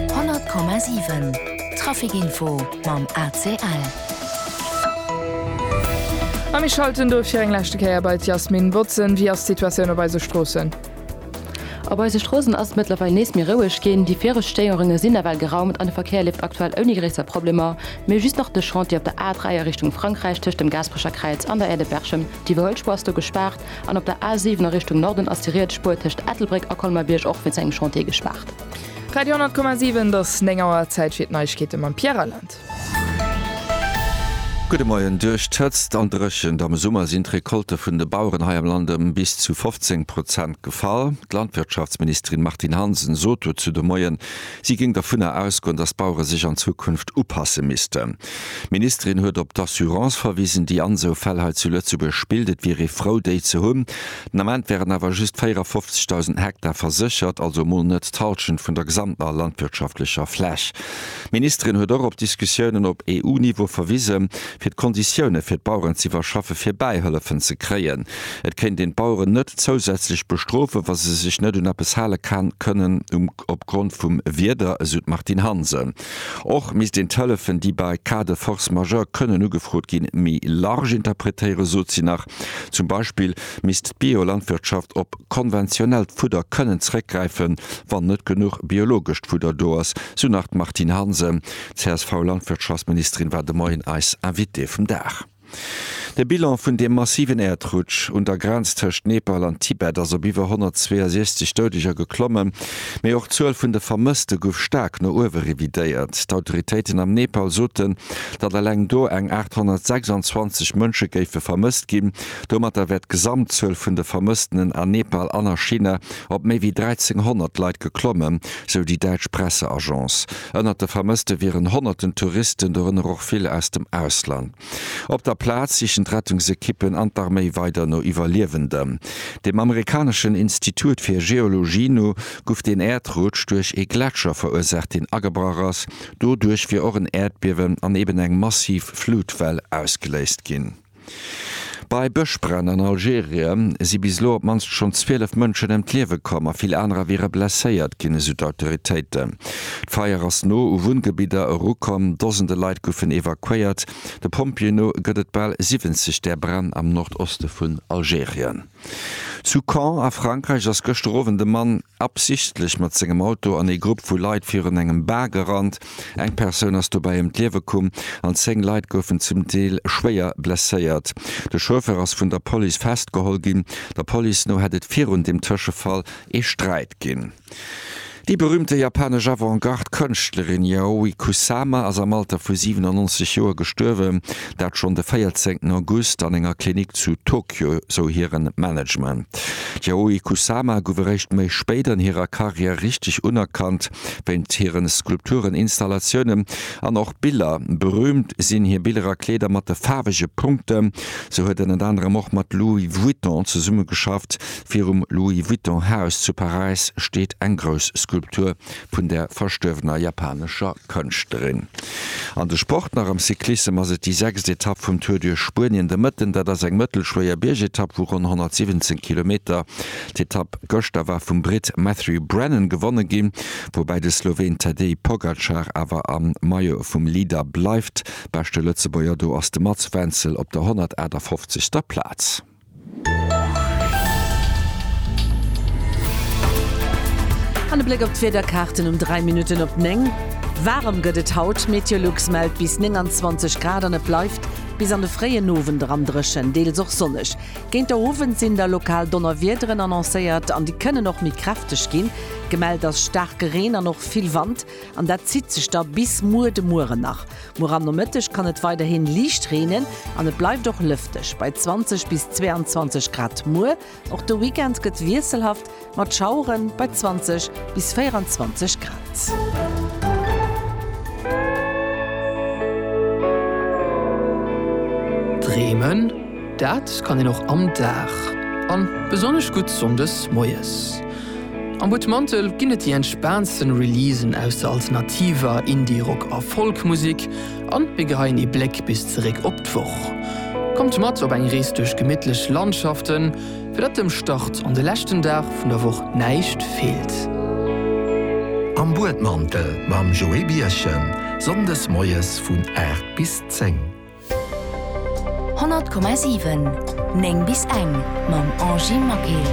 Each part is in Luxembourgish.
100,7 Trafic-Info mam ACL. A mir schalten dofir eng leschte Kéier bei d'Jasmin Botzen. Wéi ass d'Situatioun op eise Stroossen? Op eise Stroossen ass et mëttlerweil nees méi roueg ginn. Déi viregt Stéierunge sinn nawell geraumt an de Verkéier leeft aktuell ouni gréisser Problemer. Mee just nach de Chantier op der A3 a Richtung Frankräich tëscht dem Gaasperecher Kräiz an der Aire de Berchem, d'Iwwerhuelspur ass do gespaart. An op der A7 a Richtung Norden ass déi riets Spuer tëscht Ettelbréck a Colmer-Bierg och wéinst engem Chantier gespaart. Radio 100,7 et ass 9 Auer, Zäit fir d'Neiegkeete mam Pierre Reyland. Gudde Moien, Duerch d'Hëtzt an d'Dréchent am Summer sinn d'Recolte vun de Baueren hei am Land ëm bis zu 15 Prozent gefall. D'Landwirtschaftsministerin Martine Hansen sot dozou de Moien, si géing dovunner ausgoen, datt d'Bauere sech an Zukunft upasse missten. D'Ministerin huet op d'Assurance verwisen, déi an esou Fäll hei zu Lëtzebuerg spillt. Et wier ee frou, déi ze hunn. Den Ament wären awer just 54.000 Hektar verséchert, also mol net d'Hallschent vun der gesamter landwirtschaftlecher Fläch. D'Ministerin huet och op d'Diskussiounen op EU-Niveau verwisen, fir d'Konditioune fir d'Baueren ze iwwerschaffen, fir Bäihëllefen ze kréien. Et kéint een d'Baueren net zousätzlech bestrofen, wa se sech net un eppes hale kënnen opgrond vum Wieder, esou d'Martine Hansen. Och misst een d'Hëllefen, déi bei Cas de force majeure kënnen ugefrot ginn, méi large interpretéieren, sot si nach. Zum Beispill misst d'Biolandwirtschaft op konventionellt Fudder kënnen zeréckgräifen, wann net genuch biologescht Fudder do ass, sou nach d'Martine Hansen. D'CSV-Landwirtschaftsministerin war de Moien eis Invitée vum Dag. De Bilan vun deem massiven Äerdrutsch un der Grenz tëscht Nepal an Tibet ass op iwwer 162 Doudeger geklommen. Mee och d'Zuel vun de Vermësste gouf staark no uewe revidéiert. D'Autoritéiten am Nepal soten, datt eleng do eng 826 Mënsche géife vermësst ginn. Domatter wär d'Gesamtzuel vun de Vermësstenen a Nepal an a China op méi wéi 1.300 Leit geklommen, sou déi däitsch Presseagence. Ënnert de Vermësste wieren honnerten Touristen, dorënner och vill aus dem Ausland. Op der Plaz sichen d'Rettungsekippen an d'Arméi weider no Iwwerliewenden. Dem amerikaneschen Institut fir Geologie no guff den Äerdrutsch duerch ee Gletscher verursaacht, deen agebrach ass. Doduerch wier och en Äerdbiewen an eben eng massiv Flutwell ausgeléist ginn. Bei Bëschbränn an Algerie si bis elo op d'mannst schonn 12 Mënschen ëm d'Liewe komm a vill anerer wiere blesséiert ginn, esou d'Autoritéiten. D'Feier ass no u Wunngebidder erukomm, Dosende Leit goufen evakuéiert. De Pompjeeë no gëtt et bal 70 där Bränn am Nordoste vun Algerien. Zu Caen a Frankräich ass gëschter Owend e Mann absichtlech mat sengem Auto an ee Grupp vu Leit virun engem Bar gerannt. Eng Persoun ass dobäi ëm d'Liewe komm an 10 Leit goufen zum Deel schwéier blesséiert. De Chauffeur ass vun der Police festgeholl ginn. Der Police no hätt et virun dem Tëschefall ee Sträit ginn. Déi berüümte japanesch Avant-Garde-Kënschtlerin Yayoi Kusama ass am Alter vu 97 Joer gestuerwen, dat schonn de 14 August an enger Klinik zu Tokio, sou hire Management. D'Yayoi Kusama gouf eréischt méi spéit an hirer Karriär richteg unerkannt, wéint hire Skulpturen, Installatiounen an och Biller. Berüümt sinn hir Biller a Kleeder mat de faarwege Punkten, sou huet en ënner anerem och mat Louis Vuitton zesummegeschafft. Virum Louis Vuitton Haus zu Paräis steet eng grouss Skulptur vun der verstuerwener japanescher Kënschtlerin. An de Sport nach, am Cyclissem ass et déi sechst Etapp vum Tour duerch Spuenien de Mëtten. Dat ass eng mëttelschwéier Biergetapp vu ronn 117 Kilometer. D'Etapp gëschter war vum Britt Matthew Brennan gewonne ginn, woubäi de Sloween Tadej Pogacar awer am Maillot vum Leader bleift. Beschte Lëtzebuerger do ass de Mats Wenzel op der 158. Plaz. An e Bléck op d'Wiederkaarten um 3 Minutten op 9. Waarem gëtt et haut, Meteolux mellt bis 29 Grad an et bleift bis an de fréien Owend eran dréchen, deels och sonneg. Géint der Owend sinn da lokal Donnerwiederen annoncéiert an déi kënnen och méi kräfteg ginn. Gemellt ass staarke Reen an och vill Wand. An dat zitt sech da bis muer de Mueren nach. Muer am Nomëtteg kann et weiderhi liicht reenen an et bleift och lëfteg bei 20 bis 22 Grad. Muer och de Weekend gëtt wiesselhaft mat Schauere bei 20 bis 24 Grad. Bremen. Dat kann een och am Dag, an besonnesch gutt Sonndes moies. Am Butmantel ginn et déi entspaantsten Releasen aus der alternativer, Indie, Rock a Folk Musik, an mir geheien ee Bléck bis zeréck op d'Woch. Kommt mat op eng Rees duerch gemittlech Landschaften, fir datt dem Start an de leschten Dag vun der Woch näischt feelt. Am Buedmantel mam Joé Birchen, Sonndes moies vun 8 bis 10. 100,7 9 bis eng mam Angie Maquet.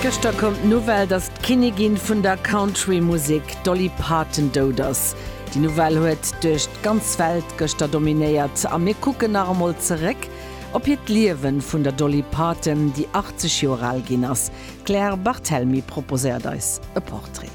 Gëschter koum d'Nouvelle, datt d'Kinnigin vun der Country Musek Dolly Parton dout ass. Déi Nouvelle huet duerch d'ganz Welt gëschter dominéiert a mir kucken nach emol zeréck op hiert Liewen vun der Dolly Parton, déi 80 Joer al ginn ass. D'Claire Barthelmy proposéiert eis e Portrait.